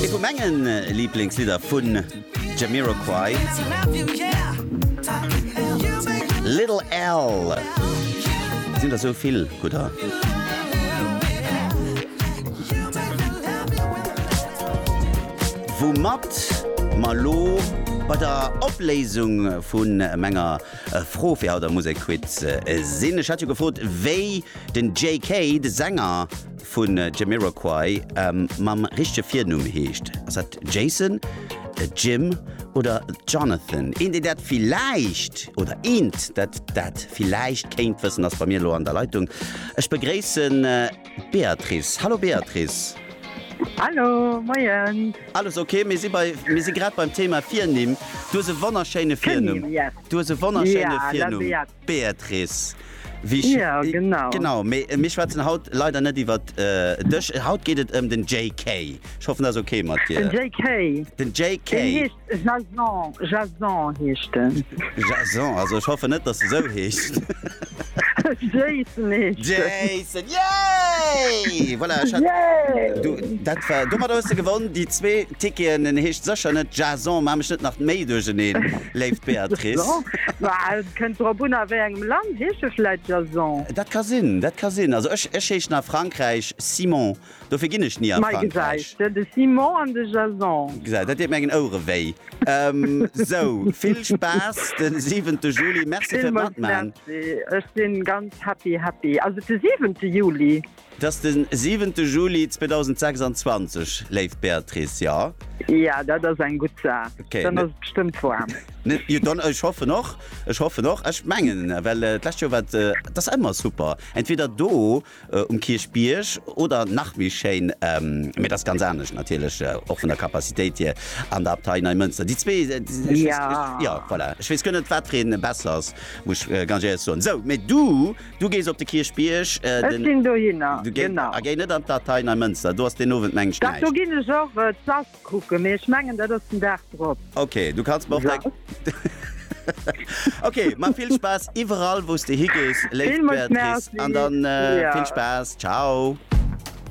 Ee vu menge Liblingslidder vun Jamiroquai, Little Al. Et sinn der sou vill gudder. Woumat mer elo bei der Opléisung vu menger Fro fir haut am Musekquiz sinn. Ech hat jo gefrot, wéi den JK, de Sänger, vun Jamiroquai mam richtege Virnumm heescht. Ass dat Jason, Jim oder Jonathan? Een deen dat villäicht oder eent dat dat villäicht kéint wëssen ass bei mir elo an der Leitung. Ech begréissen d'Beatrice. Hallo Beatrice. Hallo, moien. Alles ok, mir si bei, mir si grad beim Thema Virnimm. Du hues e wonnerschéine Virnumm. Virnimm, yes. Du hues e wonnerschéine Virnumm. Ja, la Beat. Béatrice, wéi ech. Jo, genau. Genau, mee mir schwätzen haut leider net iwwer dech. Haut geet et ëm den JK. Ech hoffen, dat ass ok mat dir. Den JK? Den JK. Deen heescht Jason. Jason heescht den. Jason, also ech hoffen net, dass de esou heescht. Jayson heescht den. Jayson, yay! Voilà, ech hat. Yay! Domat hues de gewonn, déi zwee. D'Ticketen, en heescht sécher net Jason, maa mech net nach méi duercheneen, léift Béatrice. Ma et kënnt drop un, a wéi engem Land. Heescht e vläit Jason? Dat ka sinn, dat ka sinn. Also ech, ech heeschen a Frankräich Simon, dofir ginn ech ni a Frankräich. Mei gesäis de, de Simon an de Jason. Gesäis, dat deet mengen Ouere wéi. Sou, vill Spaass de siwente Juli. Merci fir d'Matman. Villmools Merci. Ech sinn ganz happy, happy. Ass et de siwente Juli? Et ass de siwente Juli 2026, léif Béatrice, jo? Jo, dat ass eng gutt Saach. Dann ass et bestëmmt waarm. Jo, dann, ech hoffen och. Ech hoffen och. Ech mengen, well d'lescht Joer war et, et ass ëmmer super, entweder do um Kierchbierg oder nach méi schéin, mee et ass ganz anescht natierlech och vun der Capacitéit hier, an der Abtei Neimënster. Déi zwee, jo, voilà. Ech weess guer net, wat fir ee besser ass, muss ech ganz éierlech soen. Sou, mee du Du gees op de Kierchbierg. Ech ginn dohinner, genau. A géi net an d'Atei Neimënster, do ass deen Owend mengt näischt. Dach, do ginn ech och d'Sass kucken, mee ech mengen, dat ass den Dag drop. Ok, du kanns mer och deng. Ok, ma vill Spaass iwwerall, wou s de higees, léif Béatrice, an dann vill Spaass. Ciao.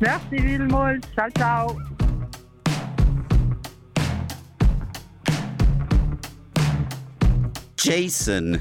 Merci villmools. Ciao, ciao. Jason.